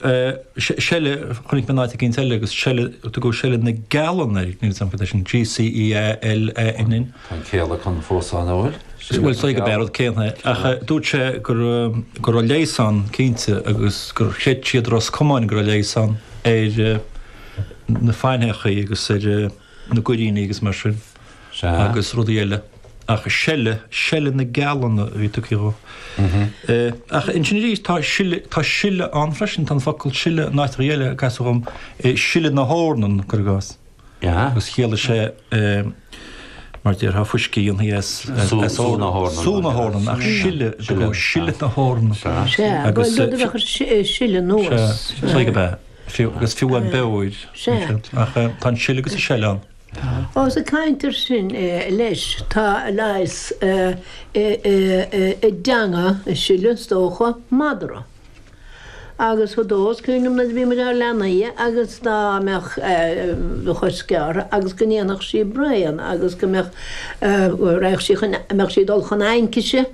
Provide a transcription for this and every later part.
seile, chonaic mé in áit eicínt eile agus seile, tugadh seile na gceallann uilig, níl 'fhios a'm cad é sin, g-c-e-a-l-l-a-n-n, in. Tá an céalacan fós ann, an bhfuil? Bhuel, saothar geal. B'é an rud céanna é. Ach dúirt sé go raibh, go raibh leigheas ann cinnte agus gur chreid siad i Ros Comáin go raibh leigheas ann ar na faithneachaí agus ar. na goiríní agus mar sin agus rudaí eile ach seile, seile na gceallann a bhí tugtha dhó. Ach ansin arís tá sil, tá sile ann freisin, tá an focal sile in áiteanna eile, a casadh dhom, sile na heornan, gur gas, agus chiallaigh sé, mar déarfá, fuiscí a dhéanfaí as, as sú na heornan, sú na heornan, ach sile, sile na heornan, agus, Bhuel, rud a bheadh ar sile nua. Sea, slag ab ea. Fiú agus fiú an beoir, ach tá an sileadh agus an seil ann. Ós ag caint air sin, leis, tá leigheas i dteanga an sileadh, is dócha, madra. Agus fadó is cuimhin liom nuair a bhíomar inár leanaí agus dá mbeadh do chos gearrtha agus go ndéanfadh sí braon agus go mbeadh, raghadh sí chun, mbeadh sí ag dul chun aincise,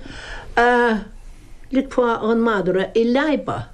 ligfeá dhon madra í a leadhbadh.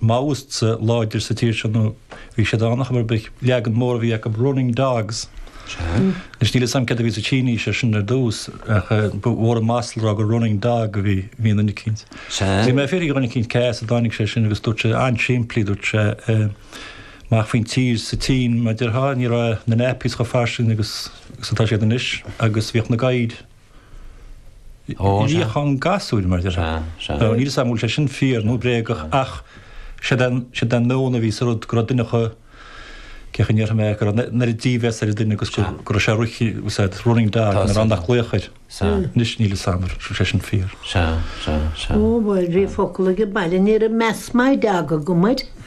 Maoists láidir sa tír seo nó bhí siad ann ach ba é an leagan mór a bhí acu running dogs. Anois níl 'fhios a'm céard a bhí sa tSínis air sin ar dtús ach ba mhór an masla a rá gur running dog a bhí i nduine eicínt. Bhí mé ag fiafraigh de dhuine eicínt cé as a dtáinig sé sin agus dúirt sé, an-simplí, dúirt sé amach faoin tír sa tSín mar déarfá ní raibh na nappies chomh fairsing agus atá siad anois agus bhíodh na gadhair Níochán gasúir, mar a déarfá. Níl 'fhios a'm an bhfuil sé sin fíor nó bréagach ach sin é an, sin é an meon a bhí sa rud, go raibh duine acu, cén chaoi a ndéarfaidh mé, go raibh an oiread dímheas ar an duine agus go, go raibh sé roiche, what's that, running dog, an oiread nach glaodh air. Anois níl 'fhios a'm an bhfuil sé sin fíor. Ó bhuel, bhí focal age baile, ní raibh meas madra agam air.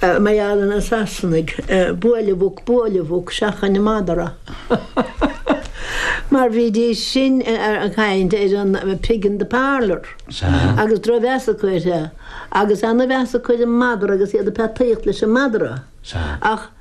Meallann na Sasanaigh buail an mhuc, buail an mhuc, seachain an madra. Mar bhídís sin ag caint ar an pig in the parlour agus drochmheas acu air agus ana-mheas acu ar an madra agus iad ag peataíocht leis an madra. Ach.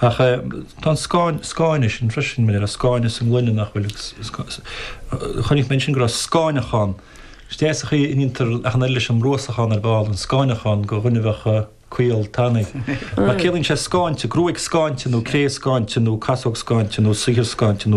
Ach tá an scáineadh sin freisin, bheadh scáineadh sa ngloine nach bhfuil agus chonaic mé ansin go raibh scáineachán. Is deas an chaoi a ndéantar achán air leis an mbruasachán ar ball, an scáineachán go dhuine a bheadh caol tanaí. Mar ciallaíonn sé scáinte, gruaig scáinte nó cré scáinte nó casóg scáinte nó saothar scáinte nó.